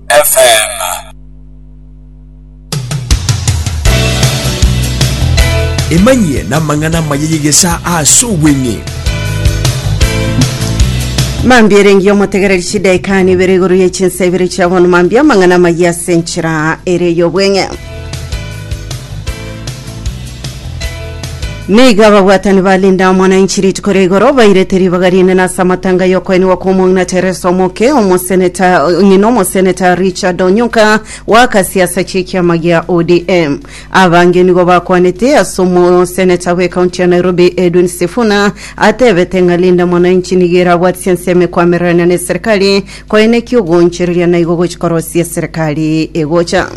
FM. Emanyie namang'ana amaya y'egesaa ase obweng'e. Mambia erengi omotegereri chidaikani ibere igoro ye chinsa ibere chia bono mambia amang'ana amaya ase enchera ere y'obweng'e Nigo ababwatani ba Linda Mwananchi rituko ria igoro bairete ribaga rinene ase amatanga y'okoenigwa kw'Omong'ina Teresa Omoke, omoseneta ng'ina omoseneta Richard Onyuka w'akasia ase chi'ekiama gia ODM. Abange nigo bakwanete ase omoseneta bw'ekaunti ya Nairobi Edwin Sifuna atebete ng'a Linda Mwananchi nigo erabwatisia ensemo ekwamererania neserikali Koine ki ogoonchereria naigo gochia korosia eserekari egocha?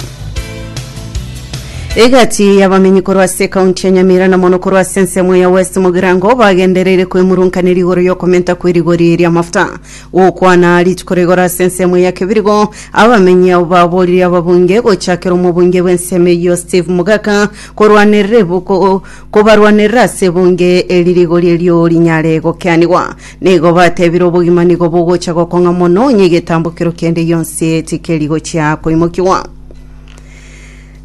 Egati y'abamenyi korwa ase ekaunti ya Nyamira na mono korwa ase ensemo ya West Mugirango bagendereire kwemurunkanera igoro y'okomenta kw'erigori ri'amafuta. Gokwana rituko rigoro ase ensemo ya Kebirigo, abamenyi abo baboorire ababunge gochakera omobunge bw'ensemo eyio Steve Mugaka korwanerera ebuko kobarwanerera ase ebunge eri rigori erio rinyare gokeanigwa. Nigo batebire obogima nigo bogocha gokong'a mono, onye egetambokero kende gionsi tikeri gochia koimokigwa.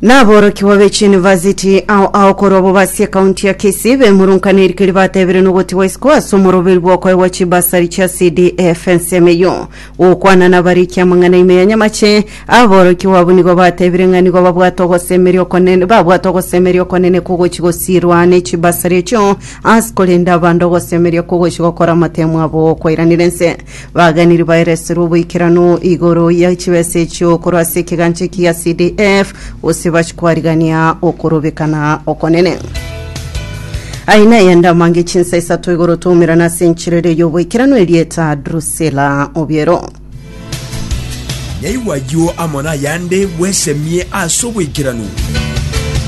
Naborokigwa be chiyunivasiti ao ao korwa bobe ase ekaunti ya Kisii bemurunkanire erikeri batebire nogotigwa isiko ase omoroberio bwokoegwa chibasari chia CDF ensemo eyio. Gokwana nabarikia amang'ana ime ya nyamache, aborokigwa abwo nigo batebire ng'a nigo babwate ogosemeria okonene babwate ogosemeria okonene kogochi gosiirwa ne chibasari echio ase korenda abande ogosemeria kogochi gokora amatemo abo okwairanera ense. Baaganeiri baereserwe oboikeranu igoro ya chibesa echio korwa ase ekegancha ekiya CDF, gose bache kwarigania okorobekana okonene. Aye naye ndamange chinsa isato igoro twaumerana ase encherere y'oboikeranu erieta Drusila obiero. Nyaigwa ayio amo nayande bwesemie ase oboikeranu.